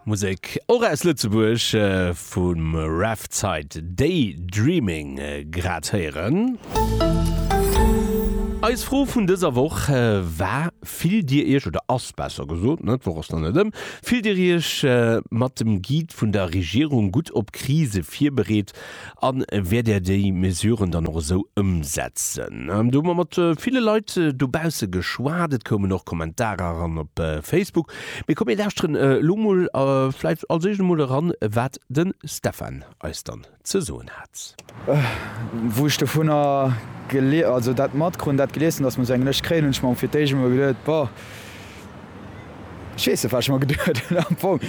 Musek och aus Lëtzebuerg vum Revtide Day Dreaming grad héieren. Eis Fro vun dëser Woch war, Fillt Dir Iech, oder ass besser gesot, ne, d'Woch ass nach net ëm, fillt Dir Iech mat dem Guide vun der Regierung gutt op Krise virbereet? A wäert Där déi Mesuren dann och esou ëmsetzen? Do hu mer mat ville Leit dobausse geschwat. Et koumen och Kommentarer eran op Facebook. Mee komm mir lauschteren elo mol vläit als Eischt emol eran, wat de Stefan eis dann ze soen hat. Wou ech dovunner gel-, also dat matkrut an dat gelies hunn, dass mer esou eng Lëscht kréien, hunn ech mer fir d'éischt emol geduet, Boah. Ech weess net, wat ech mer geduet hunn am Fong.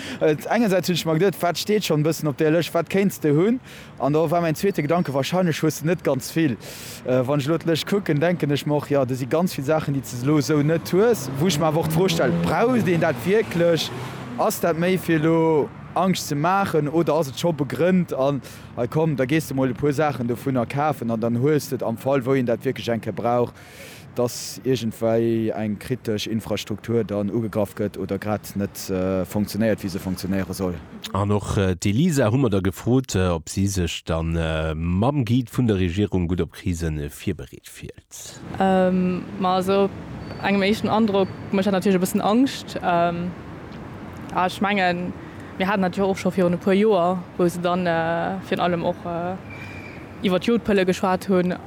Engersäits hunn ech mer geduet, wat steet schonn e bëssen op där Lëscht, wat kéints de hunn? An da war mäin zweete Gedanke, wahrscheinlech hues de net ganz vill. Wann ech elo d'Lëscht kucken, denken ech mer och, jo, do si ganz vill Saachen, déi s de elo esou net hues. Wou ech mer awer och d'Fro stellen, braucht een dat wierklech? Ass dat méi fir elo Angscht ze maachen oder ass et scho begrënnt? An hei komm, da gees de mol e puer Saachen dovunner kafen an dann hues de et am Fall, wou een dat wierklech eng Kéier brauch, dass iergendwei eng kritesch Infrastruktur dann ugegraff gëtt oder grad net funktionéiert, wéi se funktionéiere soll. An och d'Elisa hu mer da gefrot, ob si sech da mam Guide vun der Regierung gutt op Krise virbereet fillt. Ma esou op engem éischten Androck mécht dat natierlech e bëssen Angscht. A ech mengen, mir haten dat jo och scho virun e puer Joer, wou se dann virun allem och iwwer d'Jodpëlle geschwat hunn.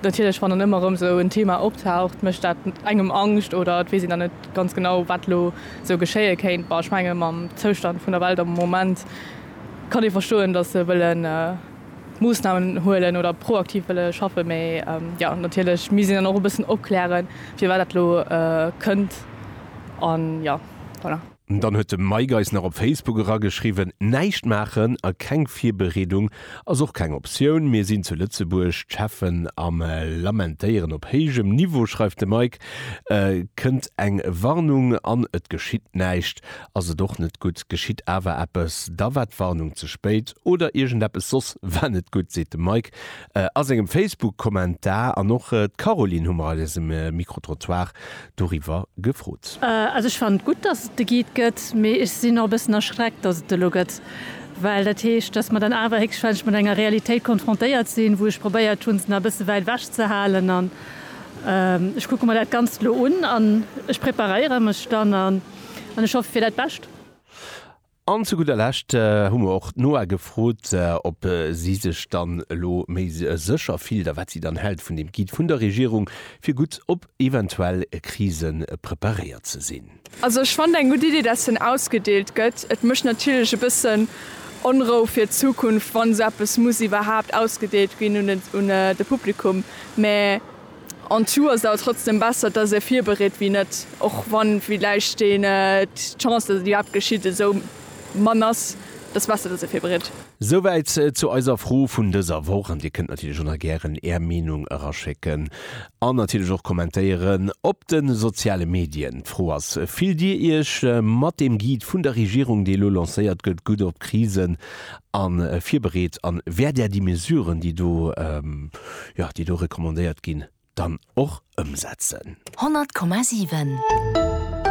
Natierlech, wann dann ëmmer erëm esou en Thema optaucht, mécht dat engem Angscht oder et weess een dann net ganz genau, wat elo esou geschéie kéint. Bon, ech menge mam Zoustand vun der Welt am Moment kann ee verstoen, datt se wëlle Moossnamen huelen oder proaktiv wëlle schaffen. Mee jo, natierlech misst een dann och e bëssen opklären, firwat dat elo kënnt. An jo, voilà. Dann huet de Mike eis nach op Facebook erageschriwwen, Näischt maachen a keng Virbereedung ass och keng Optioun. Mir sinn zu Lëtzebuerg, d'Cheffen am lamentéieren op héijem Niveau, schreift de Mike. Kënnt eng Warnung an et geschitt näischt, ass et och net gutt. Geschitt awer eppes, da war d'Warnung ze spéit oder iergendeppes soss war net gutt, seet de Mike. A sengem Facebook-Kommentar an och d'Caroline hu mer a dësem Micro-Trottoir doriwwer gefrot. Also ech fannen et gutt, dass et de Guide gëtt, mee ech sinn och e bëssen erschreckt, dass et de lo gëtt, well dat heescht, dass mer dann awer héchstwahrscheinlech mat enger Realitéit konfrontéiert sinn, wou ech probéiert hunn, se nach e bësse wäit ewech ze halen. An ech kucke mer dat Ganzt elo un an ech preparéiere mech dann an ech hoffe fir dat Bescht. An zu gudder Lescht hu mer och d'Noa gefrot, ob si sech dann elo méi sécher fillt a wat si dann hält vun deem Guide vun der Regierung, fir gutt op eventuell Krise preparéiert ze sinn. Also ech fannen eng gutt Idee, dat hien ausgedeelt gëtt. Et mécht natierlech e bëssen Onrou fir d'Zukunft, wann esou eppes muss iwwerhaapt ausgedeelt ginn un de Publikum, mä En tout ass et awer trotzdem besser dass ee virbereet wéi net, och wann villäicht den d'Chance dass et iwwerhaapt geschitt esou mann ass, et ass besser dass ee virbereet. Souwäit zu eiser Fro vun dëser Woch an Dir kënnt natierlech och nach gären Är Meenung eraschécken an natierlech och kommentéieren op de soziale Medien. D'Fro ass, Fillt Dir Iech mat dem Guide vun der Regierung, dee elo lancéiert gëtt, gutt op d'Krisen an virbereet an wäert Där déi Mesuren, déi do, jo, déi do recommandéiert ginn, dann och ëmsetzen. 100,7.